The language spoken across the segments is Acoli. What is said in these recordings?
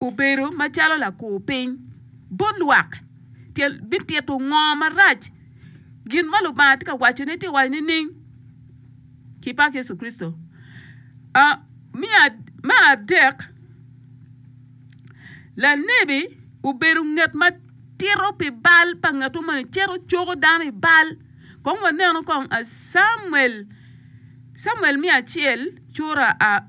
obedo macalo lakur piny bot lwak, pien bitito ngo marac gin ma Lubanga tye ka waco ne tye waco nining? Ki pak Yecu Kricito. Me adek, lanebi obedo nget ma tito pi bal pa ngeto moni cito coko dano i bal kong waneno kong Camuel, Camuel me acel cura.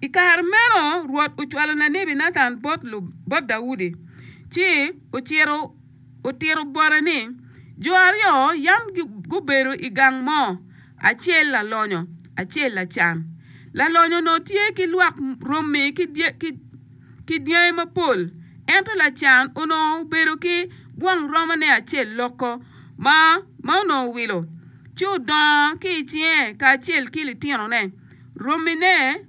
I kare meno Rwot ocwalo lanebi Natan bot Daudi, ci ocito otito bote ni, Jo aryo yam gubedo i gang mo, acel lalonyo, acel lacan. Lalonyo onongo tye ki lwak romi ki dyangi mapol, ento lacan onongo obedo ki gwong romone acel loko ma onongo owilo, ci odongo ki i cinge kacel ki litinone. romone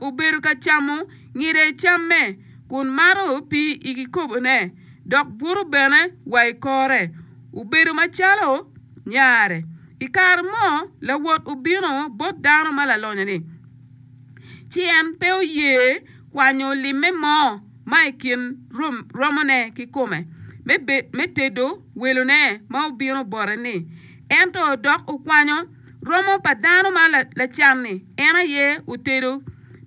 obedo ka camo ngide i camme, kun mato pii i kikobone, dok buto bene wa i kore. Obedo macalo nyare. I kare mo, lawot obino bot dano ma lalonyo-ni, ci en pe oye kwanyo limme mo ma i kin romone ki kome me tedo welone ma obino bote-ni, ento dok okwanyo. Romo pa dano ma lacan-ni en aye otedo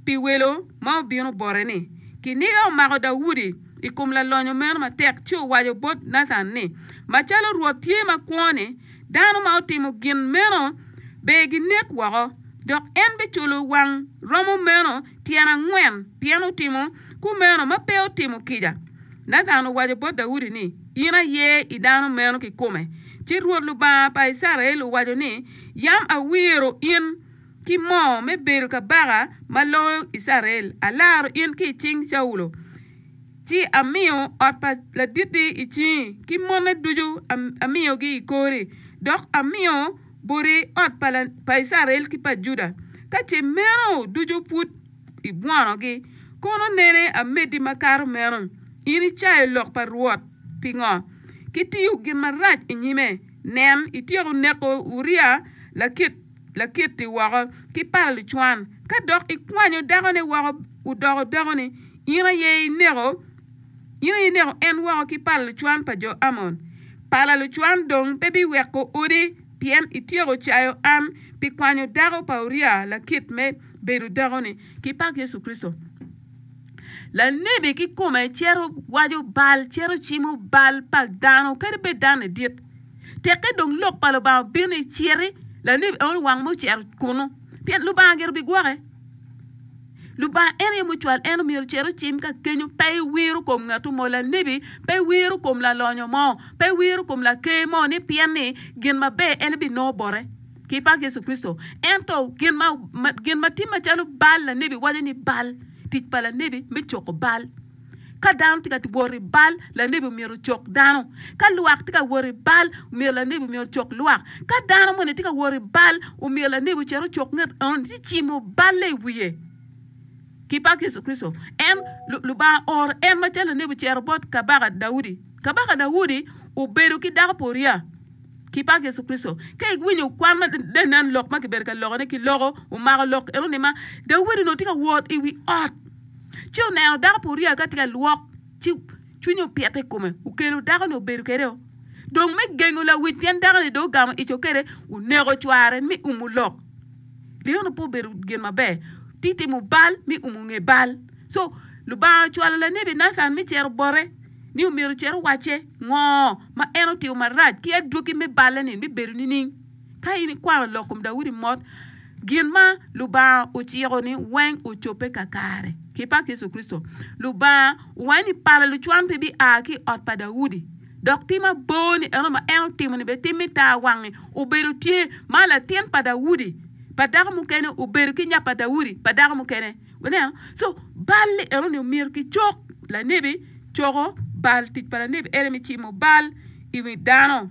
pi welo ma obino bote-ni. Kiniga omako Daudi i kom lalonyo meno matek ci owaco bot Nathan ni, Macalo Rwot tye ma kwo-ni, dano ma otimo gin meno ber ginek woko, dok en biculo wang romo meno tyen angwen pien otimo kumeno ma pe otimo kica. Nathan owaco bot Daudi ni. In aye i dano meno kikome. Ci Rwot Lubanga pa Icrael owaco ni, Yam awiro in ki moo me bedo kabaka ma loyo Icrael, alaro in ki i cing Caulo, ci amiyo ot pa laditti i cingi, ki mone ducu amiyogi i kori, dok amiyo boti ot pa Icrael ki pa Juda. Ka ce meno ducu pud. i bworogi, kono nene ameddi makato meno. In icayo lok pa Rwot. Pingo? Kitiyo gin marac i nyime. Nen, ityeko neko Uria Lakiti woko ki pala lucwan, ka dok ikwanyo dakone woko odoko dakoni. In aye ineko en woko ki pala lucwan pa jo Amon. Pala lucwan dong pe biweko odi, pien ityeko cayo an pi kwanyo dako pa Uria Lakit me bedo dako ni kipak yecu kricito lanebi kikome cito waco bal cito cimo bal pa dano kadi bed dano ni dit teke dong lok pa lubanga obino i citi lanebi eno wang mo cito kunu pien lubanga gire bigwoke lubanga en aye mucwal en myero ocit ocim ka kenyo pe iwiro kom ngatu mo lanebi pe iwiro kom lalonyo mo pe iwiro kom laker mo ni pien ni gin maber en binongo bote. ki pak Yecu Kricito. Ento gin ma, ma, gin ma tye macalo bal, lanebi waco ni bal, tic pa lanebi me coko bal. Ka dano tye ka wot i bal, lanebi omyero ocok dano. Ka lwak tye ka wot i bal, omyero lanebi omyero ocok lwak. Ka dano moni tye ka wot i bal, omyero lanebi ocit ocok nget eno ni cimo balle i wiye. Ki pak Yecu Kricito, en, Lu- Lubanga ooro en macalo lanebi ocito bot Kabaka Daudi. Kabaka Daudi obedo ki dako pa Uria. ki pak Yecu Kricito. Ka iwinyo kwan ma dano nen lok ma kibedo ka lokone ki loko, omako lok eno ni ma, Daudi onongo tye ka wot i wi ot, ci oneno dako pa Uria ka tye ka lwok, ci cwinye opite i kome, okelo dako ni obedo kede o. Dong me gengo lawic pien dako ni dong ogamo ico kede, oneko cware mi umu lok. Li eno pe obedo gin maber, ti timo bal mi umu nge bal. Co, Lubanga ocwalo lanebi Nathan mi cito bote ni omyero ocit owacce. Ngo ma en otimo marac, ki adwogi me balle-ni bibedo nining? Ka in ikwano lok kom Daudi mot, gin ma Lubanga ociko-ni weng ocobbe kakare. Ki pak Yecu Kricito, Lubanga owanyo ni pala lucwan pe bia ki i ot pa Daudi. Dok tim abor-ni eno ma en otimo-ni bene tim me tar wangi obedo tye, ma latin pa Daudi pa dako mukene obedo ki nya pa Daudi pa dako mukene. Wuneno? So, bal-li enoni omyero kicok lanebi coko bal. Tic pa lanebi ene me cimo bal i wi dano.